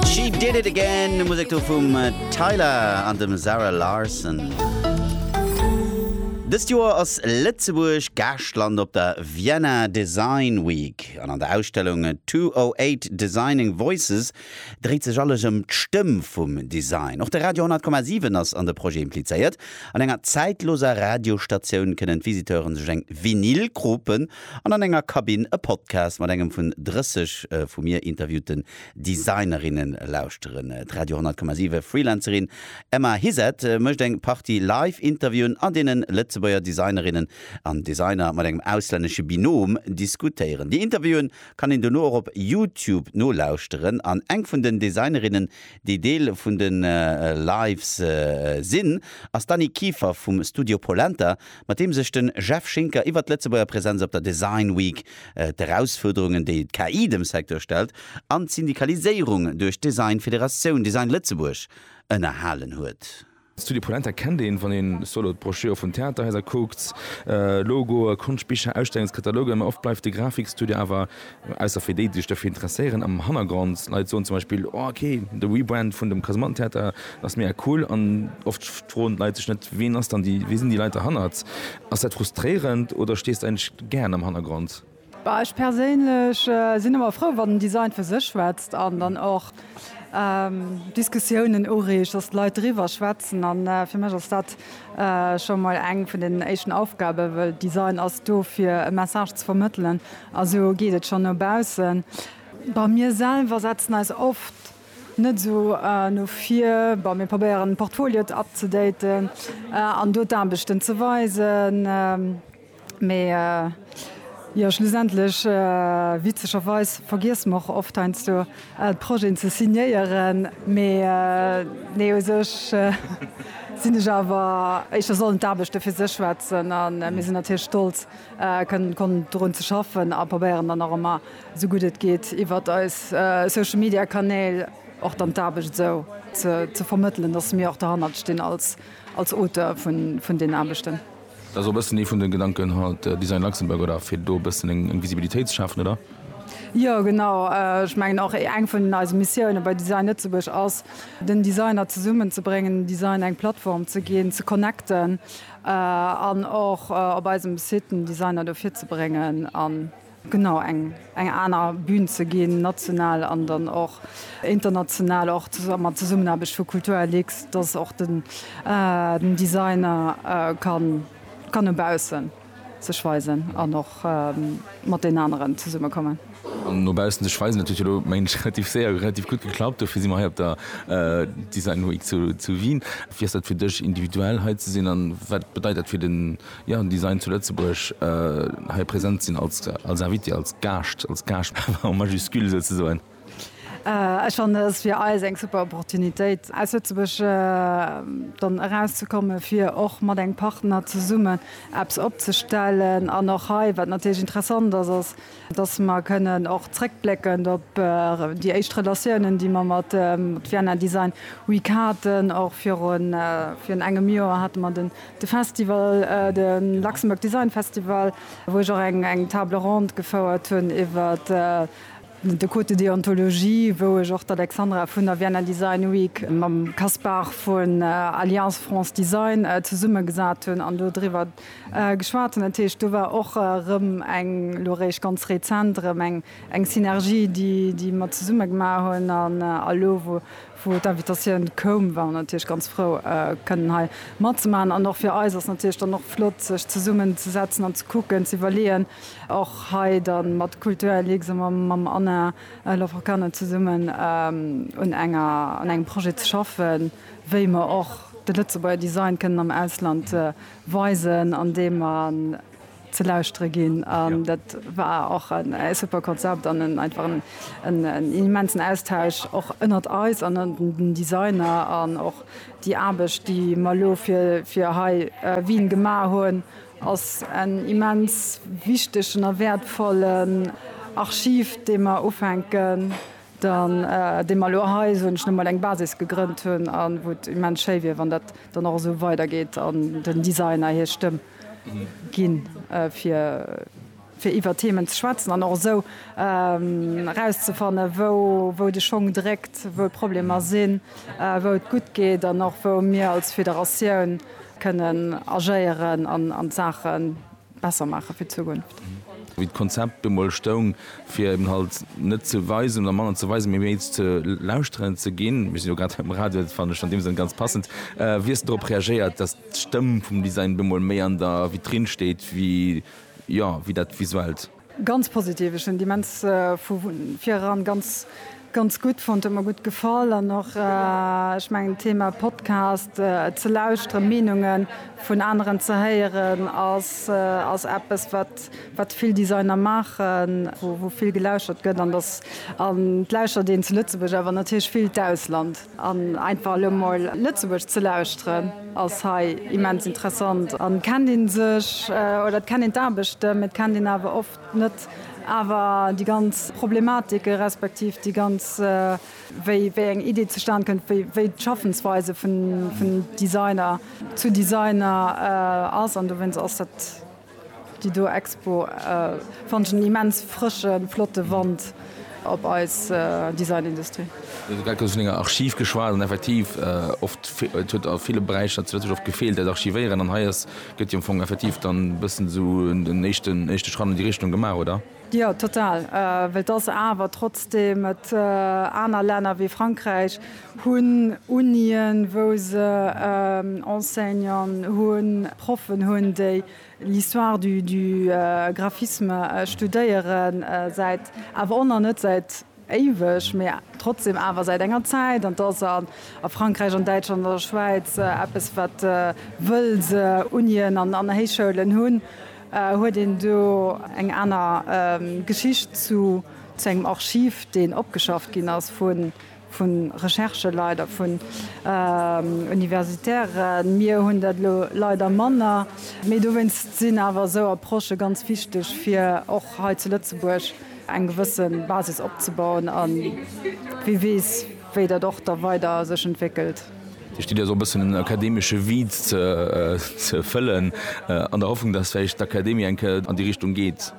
She did it again, Musik do vum äh, Tyler an dem Sarah Larson. Dëst Joer ass Lëtzebuerg Gaaschtland op der Vienna Design Week an an der Ausstellung 208 Designing Voices dréit sech alles ëm d'Stëmm vum Design. Och de Radio 10,7 ass an de Projet implizéiert. An enger zäitloser Radiostatioun kënnen d'Visiteuren sech eng Vinyl kropen an an enger Kabinn e Podcast mat engem vun 30 äh, vu mir interviewten Designerinne lauschteren. D'Radio 100,7 Freelancerin Emma Hizet mécht eng Partie Live-Interviewen, an deenen Lëtzebuerger Designerinnen an Designer mat engem auslännesche Binom diskutéieren. Déi Interviewen kann een dono och op Youtube nolauschteren. An eng vun den Designerinnen, déi Deel vun de Lives sinn, ass d'Annie Kieffer vum Studio Polenta, mat deem sech de Jeff Schinker iwwert d'Lëtzebuerger Presenz op der Design Week, d'Erausfuerderungen, déi d'KI dem Secteur stellt, an d'Syndikaliséierung duerch d'Design-Federatioun Design Lëtzebuerg ënnerhalen huet. D'Studio Polenta kennt een, wann een solo d'Broschüre vun Theaterhaiser kuckt, Logoe, Konschtbicher, Ausstellungskatalogen. Oft bleift de Grafikstudio awer Ausser fir déi, déi sech dofir interesséieren, am Hannergrond. Leit soen zum Beispill, Oh, ok, de Rebrand vun dem Kasemattentheater ass mega cool. An oft froen d'Leit sech net, Ween ass dann déi, wie sinn déi Leit derhannert? Ass dat frustréierend oder stees de eigentlech gären am Hannergrond? Ech perséinlech sinn ëmmer frou, wann den Design fir sech schwätzt an dann och. Diskussiounen ureegt, dass d'Leit driwwer schwätzen. A fir mech ass dat scho mol eng vun den éischten Aufgaben, well Design ass do fir e Message ze vermëttelen a sou geet et schonn no baussen. Bon, mir selwer setzen eis oft net esou no vir. Bon, mir probéieren d'Portfolioen up to daten an do d'Aarbechten ze weisen. Mee jo, schlussendlech, witzegerweis, vergiesse mer och oft heiansdo d'Projeten ze signéieren. Mee nee, u sech sinn ech awer, éischter sollen d'Aarbechte fir sech schwätzen a mir sinn natierlech stolz, kënnen konnten dorun ze schaffen a probéieren dann och ëmmer esou gutt et geet iwwert eis Social Media Kanäl och dann d'Aarbecht esou ze vermëttelen, dass mir och derhannert stinn als Auteur vun deenen Aarbechten. Dat ass och e bëssen ee vun de Gedanken haut, Design Luxembourg, oder fir do e bëssen eng Visibilitéit ze schafen, oder? Jo, genau. Ech mengen och, eng vun eise Missioune bei Design Lëtzebuerg ass, den Designer zesummen ze bréngen, dem Design eng Plattform ze ginn, ze connecten an och op eisem Site den Designer do virzebréngen. Genau, eng eng aner Bühn ze ginn, national an dann och international, och mat Zesummenaarbecht vu Kulturlux, dass och den den Designer kann kann no baussen sech weisen an och mat den aneren zesummekommen. An no baussen sech weisen, dat huet jo elo, mengen ech, relativ séier a relativ gutt geklappt. Dofir si mer hei op der Design Week zu zu Wien. Wéi ass dat fir dech, individuell hei ze sinn an wat bedeit dat fir den Jo, déi seien zu Lëtzebuerg hei present sinn als Invité, als Gaascht, als Gaascht en majuscule souzesoen. Ech fannen, et ass fir eis eng super Opportunitéit, aus Lëtzebuerg dann erauszekommen, fir och mat engem Partner zesummen eppes opzestellen. An och hei, wat natierlech interessant ass, ass, dass mer kënnen och zréckblécken op déi éischt Relatiounen, déi mer mat Vienna Design Week haten. Och virun engem Joer hate mer de Festival, de Luxembourg Design Festival, wou ech och eng Table ronde gefouert hunn iwwer de Code de déontologie, wou ech och d'Alexandra vun der Vienna Design Week mam Kaspar vun Alliance France Design zesummegesat hunn an do driwwer geschwat hunn. Dat heescht, do war och erëm eng, elo eréischt ganz rezent erëm eng, eng Synergie, déi, déi mer zesumme gemaach hunn. An elo, wou, wou d'Invitatioun koum, war mer natierlech ganz frou, kënnen hei matzemaachen. An och fir eis ass natierlech dann och flott, sech zesummenzesetzen an ze kucken, ze iwwerleeën, och hei da mat Kulturlux a mam Anna Laforcade zesummen un enger, un engem Projet ze schaffen. wéi mer och de Lëtzebuerger Design kënnen am Ausland weisen, andeem mer ze lauschtere ginn. An dat war och en super Konzept an en einfach en immensen Austausch och ënnert eis an ënnert den Designer. An och déi Aarbecht, déi mer elo fir hei Wien gemaach hunn, ass en immens wichtegen a wäertvollen Archiv, dee mer ufänken Dann, dee mer elo hei, soen ech nëmme, eng Basis gegrënnt hunn a wou et immens schéi wier, wann dat dann och esou weidergeet an den Designer hir Stëmm ginn, fir iwwer Themen ze schwätzen an och esou erauszefannen, wou de Schong dréckt, wou d'Problemer sinn, wou et gutt geet an och wou mir als Federatioun kënnen agéieren an d'Saachen. besser maache fir d'Zukunft. Wéi d'Konzept do mol stoung, fir eben halt net ze weisen oder manner ze weisen, mee méi ze lauschteren ze ginn, mir sinn jo grad am Radio, dat fannen ech an deem Sënn ganz passend, wéi hues de dorop reagéiert, dass d'Stëmm vum Design do mol méi an der Vitrine steet wéi, jo, wéi dat Visuellt? Ganz positiv, ech hunn déi immens vu vireran ganz ganz gutt fonnt, huet mer gutt gefall an och ech mengen d'Thema Podcast ze lauschteren, Meenunge vun aneren ze héieren ass ass eppes wat wat vill Designer maachen, wou wou vill gelauschtert gëtt an dass an et lauschtert een zu Lëtzebuerg awer natierlech vill d'Ausland. An einfach elo mol Lëtzebuergesch ze lauschteren ass hei immens interessant. An et kennt een sech, oder et kennt een d'Aarbechten, mee et kennt een awer oft net awer déi ganz Problematiken, respektiv déi ganz, wéi eng Idee zustan kënnt, wéi d'Schaffensweise vun Designer zu Designer ass. An dowéinst ass dat Déi do Expo fannen ech en immens frëschen, flotten Wand op eis Designindustrie. Mir hu grad vun enger Archiv geschwat an effektiv oft et huet a ville Beräicher zu Lëtzebuerg oft gefeelt dat Archivéieren an hei ass gëtt jo am Fong effektiv dann e bëssen esou en éischten éischte Schratt an déi Richtung gemaach, oder? Jo, total. Well et ass awer trotzdem, et aner Länner wéi Frankräich hunn Unien, wou se Enseignanten hunn, Proffen hunn, déi l'histoire du graphisme studéieren, säit awer och nach net säit, Éiweg, mee trotzdem awer säit enger Zäit. An 't ass a Frankräich, an Däitschland, an der Schwäiz eppes, wat wëll se Unien an an Héichschoulen hunn, huet een do eng aner Geschicht zu zu engem Archiv, deen opgeschafft ginn ass vu vu Recherche-Leit a vun Universitairen. Mir hunn dat elo leider manner, mee dowéinst sinn awer esou Approchë ganz wichteg fir och hei zu Lëtzebuerg. eng gewësse Basis opzebauen a wie weess, wéi dat och da weider sech entwéckelt. Déi Studie ass och e bëssen en akademesche Vide ze fëllen, an der Hoffnung, dass vläicht d'Akademie eng Kéier an déi Richtung geet.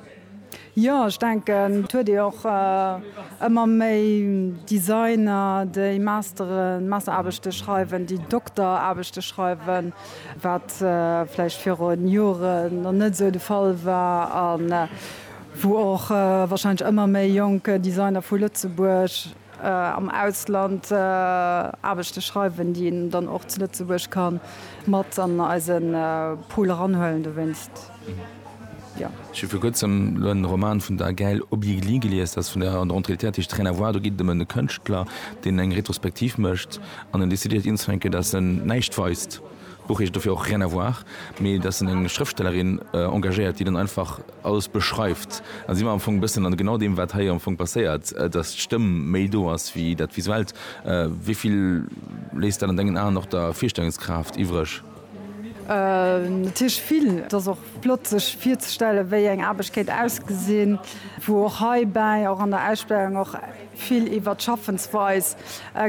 Jo, ech denken, et huet ee och ëmmer méi Designer, déi Masteren, Masteraarbechte schreiwen, déi Dokteraarbechte schreiwen, wat vläicht viru Jore nach net esou de Fall war. wou och wahrscheinlech ëmmer méi jonk Designer vu Lëtzebuerg am Ausland Aarbechte schreiwen, déi een dann och zu Lëtzebuerg ka mat an eise Pool eranhuelen. Dowéinst, jo. Ech hu vir kuerzem elo en Roman vun der Gaëlle Obiegli gelies, dat ass vun der Rentrée littéraire tiischt Rien à voir. Do geet et ëm e Kënschtler, deen eng Retrospektiv mécht an en decidéiert, ienzefänken, dat en näischt weist. D'Buch heescht dofir och Rien à voir, mee et ass dunn eng Schrëftstellerin engagéiert, déi dann einfach alles beschreift. Da si mer am Fong e bëssen an genau deem, wat hei am Fong passéiert, dass d'Stëmm méi do ass wéi dat Visuellt. Wéi vill léisst dat an dengen Aen och der Virstellungskraaft iwwreg? Natierlech vill. Et ass och Flott sech virzestellen wéi eng Aarbecht kéint ausgesinn, wou och heibäi, och an der Ausstellung och vill iwwert d'Schaffensweis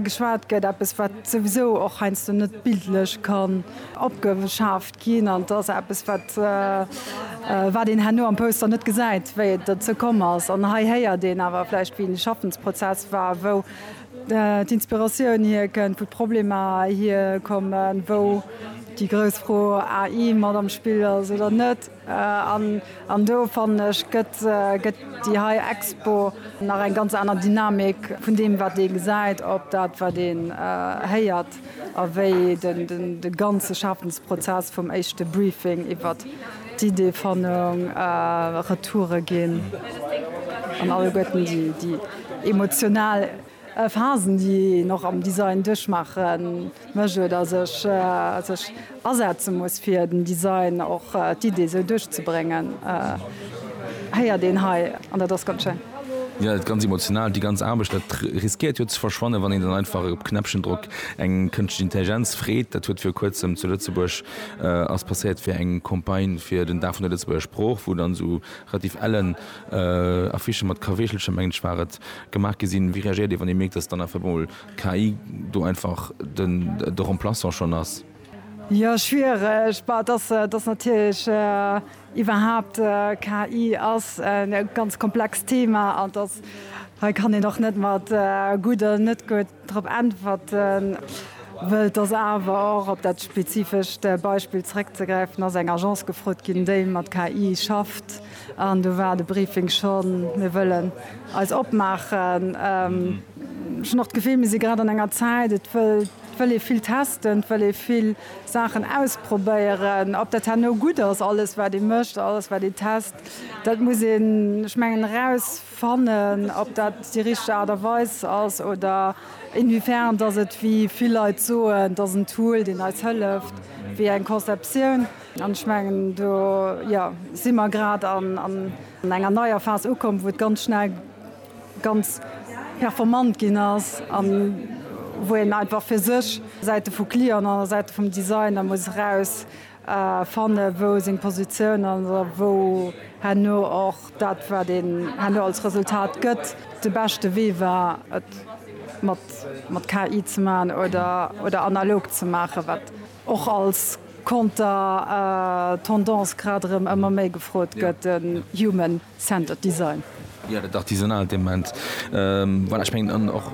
geschwat gëtt, eppes wat souwisou och heiansdo net bildlech kann opgeschaaft ginn an et ass eppes wat wat een herno am Poster net gesäit wéi et derzou komm ass an hei héiert een awer vläicht wéi de Schaffensprozess war, wou D'Inspiratioun hier kënnt, wou d'Problemer hier kommen, wou déi grouss Fro AI mat am Spill ass oder net. An do fannen ech gëtt gëtt déi hei Expo nach eng ganz aner Dynamik vun deem wat ee gesäit op dat wat een héiert. Text a wéi de ganze Schafensprozess vum éischte Briefing iwwer d'Ideefannung, Retoure ginn an alleguerten déi emotional Phasen, déi een och am Design duerchmaache mécht oder sech Asetze muss fir den Design och d'Idee sou duerchzebréngen héiert een hei an dat ass ganz schéin. Jo dat ganz emotional, déi ganz Aarbecht dat riskéiert jo ze verschwannen wann een dann einfach op Knäppchen drockt. Eng kënschtlech Intelligenz freet, dat huet viru kuerzem zu Lëtzebuerg ass passéiert fir eng Campagne fir den Dag vun der Lëtzebuerger Sprooch wou dann sou relativ ellen Affichen mat Kaweechelcher mengen ech war et gemaach gi sinn. Wéi reagéiert dir wann dir mierkt dass dann einfach mol KI do einfach de Remplaçant schonn ass? Jo, schwiereg. Bah, dass dass natierlech iwwerhaapt KI ass e ganz komplext Thema an dass hei kann een och net mat gutt oder net gutt drop äntwerten. Wëll et ass awer och, op dat spezifescht Beispill zrëckzegräifen, ass eng Agence gefrot ginn, déi mat KI schafft. An do war de Briefing schonn, Mir wëllen eis opmaachen. Ech hunn och d'Gefill, mir si grad an enger Zäit, et wëll ee vill testen, et wëll ee vill Saachen ausprobéieren. Ob dat herno gutt ass, alles wat ee mécht, alles wat ee test, dat muss een, ech mengen, erausfannen, ob dat déi richteg Aart a Weis ass oder inwiefern dass et, wéi vill Leit soen, et ass en Tool, deen eis hëlleft, wéi eng Conceptioun. An ech mengen, do, jo, si mer grad an enger neier Phas ukomm, wou et ganz schnell ganz performant ginn ass a wou een einfach fir sech, Säite vu Client an Säite vum Designer, muss eraus fanne wou seng Positioun ass a wou herno och dat, wat een herno als Resultat gëtt, de beschte Wee war, et mat KI ze maachen oder analog ze maachen, wat och als. Konter Tendance grad erëm ëmmer méi gefrot gëtt, den Human Centered Design. Jo, dat artisanaalt Element. Voilà, ech mengen an och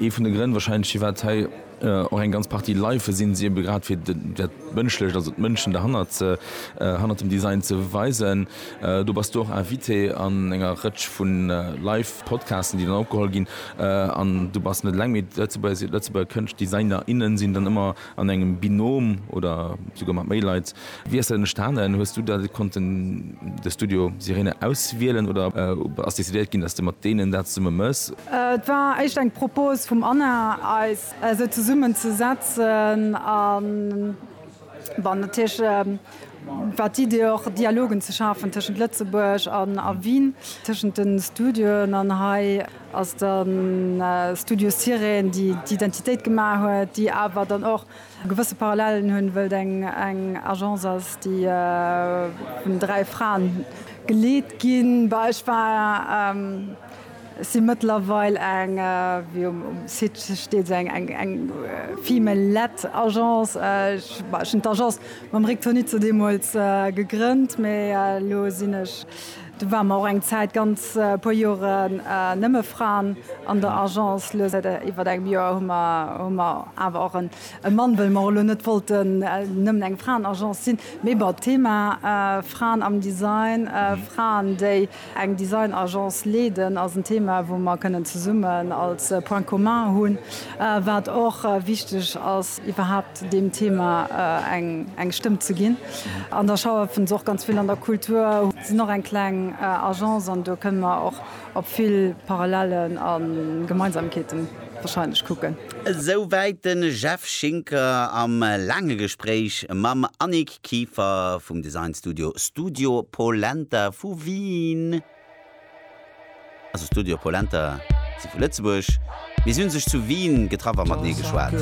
ee vun de Grënn wahrscheinlech firwat hei och eng ganz Partie Life sinn, si ebe grad fir dat Mënschlecht, also d'Mënschen derhannert ze, hannert dem Design ze weisen. Do bass du och Invité an enger Rëtsch vu Life Podcasten, déi dann opgeholl ginn an du bass net eleng, mee d'Lëtzebuerger, Lëtzebuerger Kënscht-, Designer, innen sinn dann ëmmer, An engem Binôme oder souguer mat méi Leit, wéi ass dat entstanen? Hues du da konnten de Studio Sirene auswielen oder ass decidéiert ginn, dass de mat deenen dat zesumme mëss? Et war éischt eng Propose vum Anna, eis esou zesummen ze setzen a bon natierlech war d'Idee och Dialogen ze schafen tëschent Lëtzebuerg a Wien, tëschent de Studioen an hei. Ass de Studio Sirène, déi d'Identitéit gemaach huet, déi awer dann och gewësse Parallelen hunn, wëllt eng Agence ass, déi vun dräi Fraen geleet ginn. Bah, ech war, si mëttlerweil eng, wéi um Site steet, se eng female-led Agence. Ech, bah, ech hunn d'Agence mam Rick Tonizzo deemools gegrënnt, mee elo sinn ech Do ware mer och eng Zäit, ganz puer Joren, nëmme Fraen an der Agence. Elo säit iwwer engem Joer hu mer hu mer awer och e Mann, wëll mer och elo net wollten nëmmen eng Fraenagence sinn. Mee bon, d'Thema Fraen am Design, Fraen, déi eng Designagence leeden, ass en Thema, wou mer kënnen zesummen als Point commun hunn, wat och wichteg ass iwwerhaupt, zu deem Thema eng Stëmm ze ginn. An da schaffen se och ganz vill an der Kultur, sinn och eng kleng Agence an do kënne mer och op vill Parallellen a Gemeinsamkeete warscheinlech kucken. Esou wäit de Jeff Schinker am laange Gespréich mam Annick Kieffer vum Designstudio Studio Polenta vu Wien. Also Studio Polenta si vu Lëtzebuerg, mee si hunn sech zu Wien getraff a matenee geschwat.